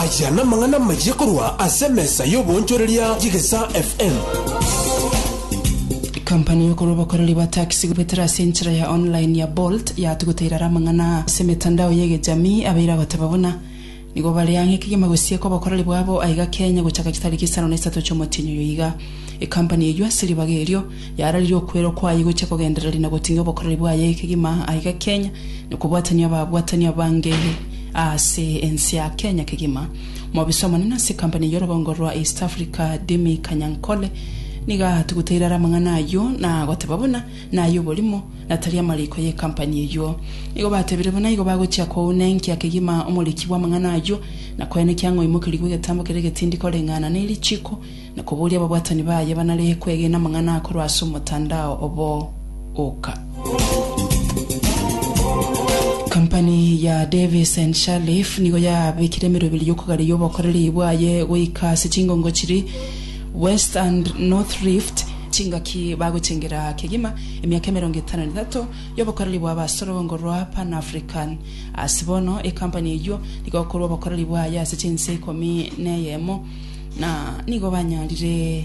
Aya namang'ana amayia korwa ase emesa y'oboonchoreria y'Egesaa FM. Kampani y'okorwa obokoreri bwa taxi gobetera ase enchera ya online ya Bolt yatuguta irara amang'ana ase emetandao y'egechamii abeire agoteba buna nigo bare ang'e kegima gosieka obokoreri bwabo aiga Kenya gochaka chitariki isano na isato chi'omotienyi oyo iga. Ekampani eywo ase ribaga erio Yararirie okwera kwaye gochia kogendereri na goting'ia obokoreri bwaye kegima aiga Kenya, na kobwatania ababwatani abange aase ense ya Kenya kegima. Omobisa omonene ase ekampani eye orogongo rwa East Africa Demi Kanyankole niga atogoteire are amang'ana ayio na goteba buna naye oborimo na tari amariko ye ekampani eyio. Nigo batebire buna igo bagochia kounenkia kegima omoriki bw'amang'ana ayio na koenekia ng'a oimokerigwe egetambo kere egetindi koreng'ana ne richiiko na koboria ababwatani baye banaree kwegena amang'ana akorwa ase omotandao obo oka. Kampani ya Davis and Sharleaf nigo yabekire emeroberi y'okogareria obokoreri bwaye goika ase chingongo chiri West and North Rift, chingaki bagochengera kegima emiaka emerongo etano na etato y'obokoreri bwa abasorongo rwa Pan-African. Ase bono, ekampani eyio nigo ekorwa obokoreri bwaye ase chinse ikomi na eyemo. na nigo banyarire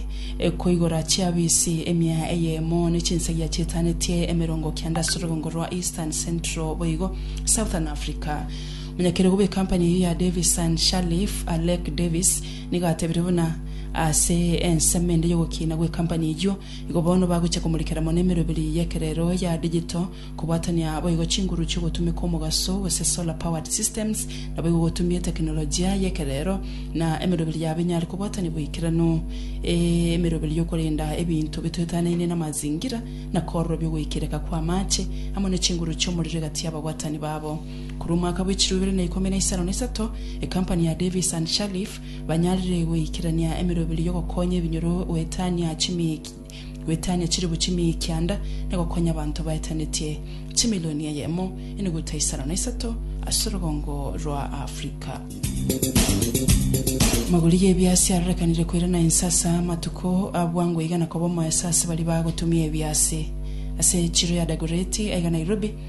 koigora chiafisi emia eyemo ne chinsagia chietanetie emerongo kianda ase orobongo rwa Eastern Central boigo Southern Africa. Omonyakerubu bwe company eyio ya Davis and Shalliff, Alec Davis, nigo atebire buna ase ensemo ende y'ogokiina gwe company eyio, igo bono bagochia komorikera mono emeroberi y'ekerero ya digital, Kobwatania boigo chinguru chi'ogotumeka omogaso gose solar powered systems naboigo gotumie tekinolojia y'ekerero na emeroberi ya binyare kobwatania boikeranu. Emeroberi y'okorenda ebinto bitoetanaine namazingira na kororobia ogoikereka kw'amaache amo ne chinguru chi'omorero egati y'ababwatani babo. Korwa omwaka bw'echiro ibere na ikomi na isano na isato, ekampani ya Davis and Shalliff banyarire goikerania emeroberi y'ogokonya ebinyoro goetania chimiya Goetania chilifu chimia ekianda na gokonya abanto baetanetie chimilioni eyemo enuguta isano na isato ase orogongo rwa Afrika. Amagori y'ebiasi arorekanire koirana inse ase amatuko a bwango iga na koba omoeso ase baria bagotumia ebiasi ase echiro ya Dagoreti aiga Nairobi.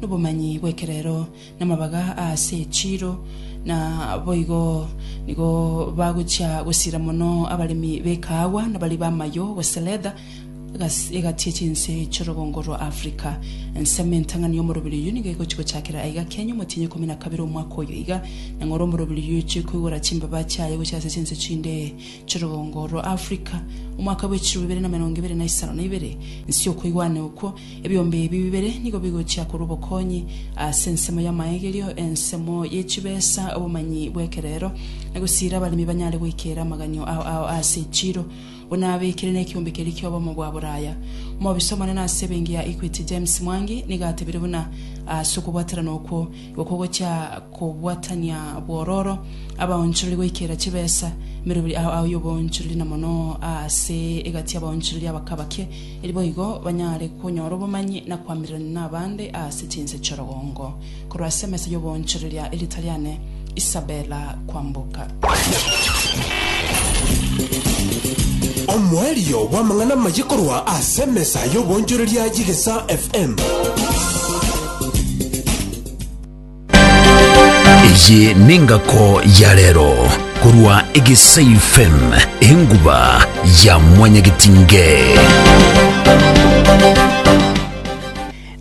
nobomanyi bw'ekerero, namabaga aase echiiro, na boigo nigo bagochia gosira mono abaremi b'ekaagwa nabaria b'amayo, gose leather, egas- egati echinse chi'orogongo rwa Africa. Ensemo entang'ani y'omoroberi oyio nigo egochia gochakera aiga Kenya omotienyi ikomi na kabere omwaka oyo iga, na ng'ora omoroberi oyio ochie koigora chimbaba chiaye gochia ase chinse chinde chi'orogongo rwa Africa. Omwaka bw'echirobibere na emerongo ebere na isano na ibere, inse okoigwana okwo, Ebiombe ebi bibere nigo bigochia korwa obokonyi ase ensemo y'amaegerio, ensemo ye chibesa, obomanyi bw'ekerero, na gosiira abaremi banyare goikeera amaganyo ao ao ase echiiro. Buna abekire nekiombe keria ki'obomo bwa boraya, omobisa omonene ase ebenki ya Equity James Mwangi nigo atebire buna ase okobwaterana okwo, Okwo gochia kobwatania bwororo abaonchorori goikera chibesa mere buri ao ao y'oboonchorori, na mono aase egati y'abaonchorori abakabake, eri boigo banyare konyora obomanyi na koamererania nabande aase chinse chi'orogongo. Korwa ase emesa y'oboonchorori ya Eritaliane, Isabella Kwamboka. Omoerio bw'amang'ana amaye korwa ase emesa y'oboonchoreria y'Egesaa FM. Eye nengako ya rero korwa Egesei FM enguba ya mwanyagetinge.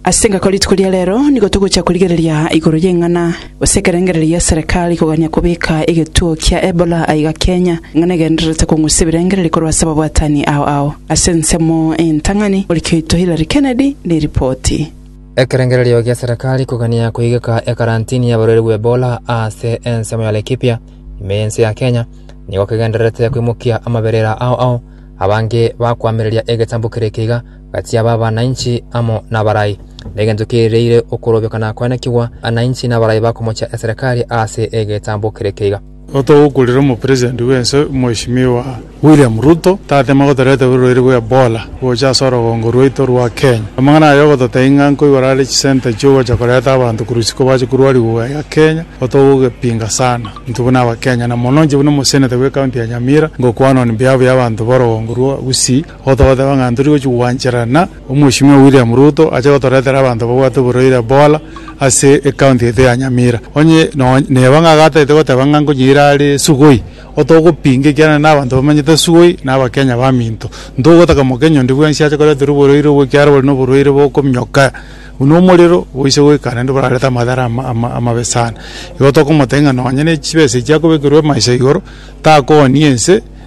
Ase engaki rituko ria reero nigo togochia korigereria igoro y'eng'ana gose ekerengererio gia Serekari kogania kobeka egetuo kia Ebola aiga Kenya, eng'ana egendererete kong'usa ebirengereri korwa ase ababwatani ao ao. Ase ensemo entang'ani, moriki oito Hillary Kennedy neripoti. Ekerengererio gia Serekari kogania koigeka ekarantini y'abarwaire bw'Ebola ase ensemo ya Laikipia, ime y'ense ya Kenya, nigo kegendererete koimokia amaberera ao ao abange bakoamereria egetambo kere ekeiga, Gati aba abanainchi amo nabarai, negencho kerireire okorobekana kwenekigwa, abanainchi nabarai bakomochia eserekari aase egetambo kere keiga. Otogokurera omopresident bwense Mheshimiwa William Ruto tatema gotoreta borwaire bwa Ebola gocha ase orogongo rwaito rwa Kenya. Amang'ana aye ogototebia ng'a nkoigora are chisenta chiogocha koreta abanto korwa isiko bache korwariwa gaya Kenya otogogepinga sana intwe buna abakenya na mono inche buna omoseneta bwe county ya Nyamira ngokwana on behalf ya abanto borogongo rwa Gusii Gotogoteba ng'a ntori gochia gwancherana, Omweshimiwa William Ruto ache gotoretera abanto babwate oborwaire bora ase ecounty yaito ya Nyamira. Onye nonya neba ng'a agataete goteba ng'a nkonyeire are sugoi, otogopinga ekiagera nere nabanto bamanyete sugoi na abakenya baminto. Ntogotaka mokenya onde bwensi ache koreterwa oborwaire obwo ekiagera bore noborwaire bokominyoka buna omorero boise goika naende borarete amadhara amabe sana. Igo tokomotebia ng'a nonya nechibesa echi akobekerwa maiso igoro takooni ense.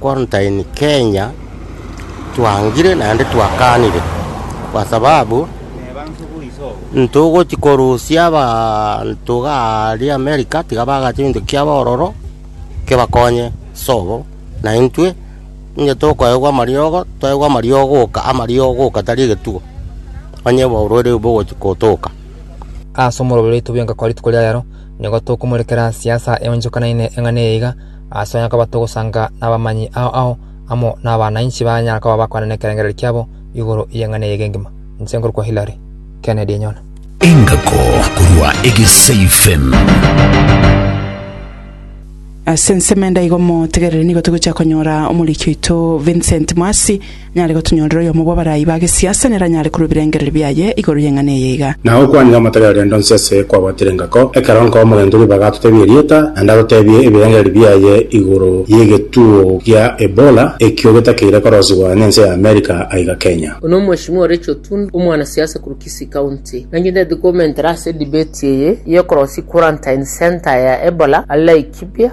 Quarantine Kenya twangire naende twakanire kwa sababu ntogoti korusia abanto iga aria America tiga bagacha egento kiabo ororo kebakonye sobo na intwe onye tokoegwa amariogo toegwe amariogo oka amariogo oka tari egetugo onye oborwaire obo bogochi kotoka. Ase omorobio oito bwenka kwa rituko ria rero nigo tokomorekera siasa eonchokanaine eng'ana eye iga, Ase onye koba togosanga nabamanyi ao ao amo nabana inse banyare koba bakwane nekerengererio kiabo igoro y'eng'ana eye egengima. Inse nkorokwa Hilary Kennedy Enyona. Engako korwa Egesaifen. Ase ensemo ende aiga omotegereri nigo togochia konyora omoriki oito Vincent Mwasi Nyare gotunyorera oyomo bw'abarai ba gesiasa neranyare korwa ebirengererio biaye igoro y'eng'ana eye iga. Na okwanire amatari a rende onsi ase kwabwatire engako, ekero onka omogento ribaga atotebia erieta, naende atotebie ebirengererio biaye igoro y'egetuo gia Ebola, ekio getakeire korosigwa nense ya America aiga Kenya. Oyo nomweshimiwa Rachel Otundu, omwana siasa korwa Kisii County. Naki ntagete komentera ase edebate eye y'okorosia quarantine centre ya Ebola are Laikipia.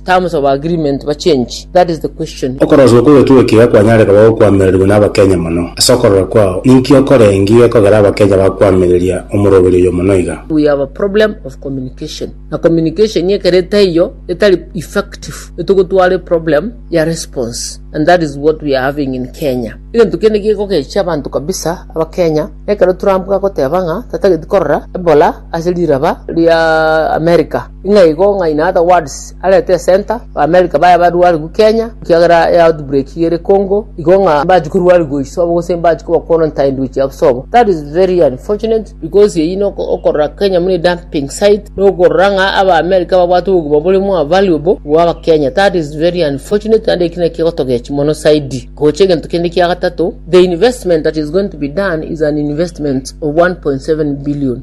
Terms of agreement ba change? That is the question. Okoroswa okwo gokigwe kiga kwanyare koba gokwamererigwa na Abakenya mono. Ase okorora kwao, ninki okorengi gekogera Abakenya bakwamireria omoroberi oyo mono iga? We have a problem of communication na communication ekero etaiyo etari effective etogotwara eproblem ya response and that is what we are having in Kenya. Egento kende gegogecha abanto kabisa Abakenya nekero Trump agoteba ng'a tatageti korora Ebola ase riraba ria America. Ng'a igo ng'a in other words arete center ba America baya barwarigwe Kenya ekiagera e outbreak ere Congo igo ng'a mbachi korwarigwa iso abo gose mbachi koba quarantined gochia abo sobo that is very unfortunate because eyio na oko- okorora Kenya buna dumping site na okorora ng'a aba America babwate obogima bore more valuable bwa aba Kenya that is very unfortunate naende eki naki gegotogechi mono zaidi gocha egento kende kia gatato the investment that is going to be done is an investment of 1.7 billion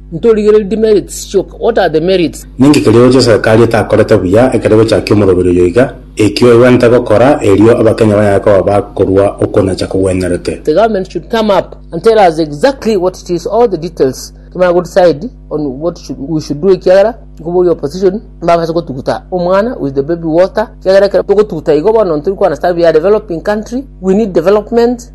Ntorigererie demerits chioka. What are the merits? Ninki keria gochia serikali etakorete buya ekero egochakia omoroberi oyo iga? Eki oegwente gokora erio abakenya bayaye koba bakorua okwo nacha kogwenerete. The government should come up and tell us exactly what it is, all the details kimanye go decide on what should, we should do ekiagera nkoboria opposition mbabase gotuguta omwana with the baby water ekiagera ekero togotuguta igo bono ntori ko understand we are developing country we need development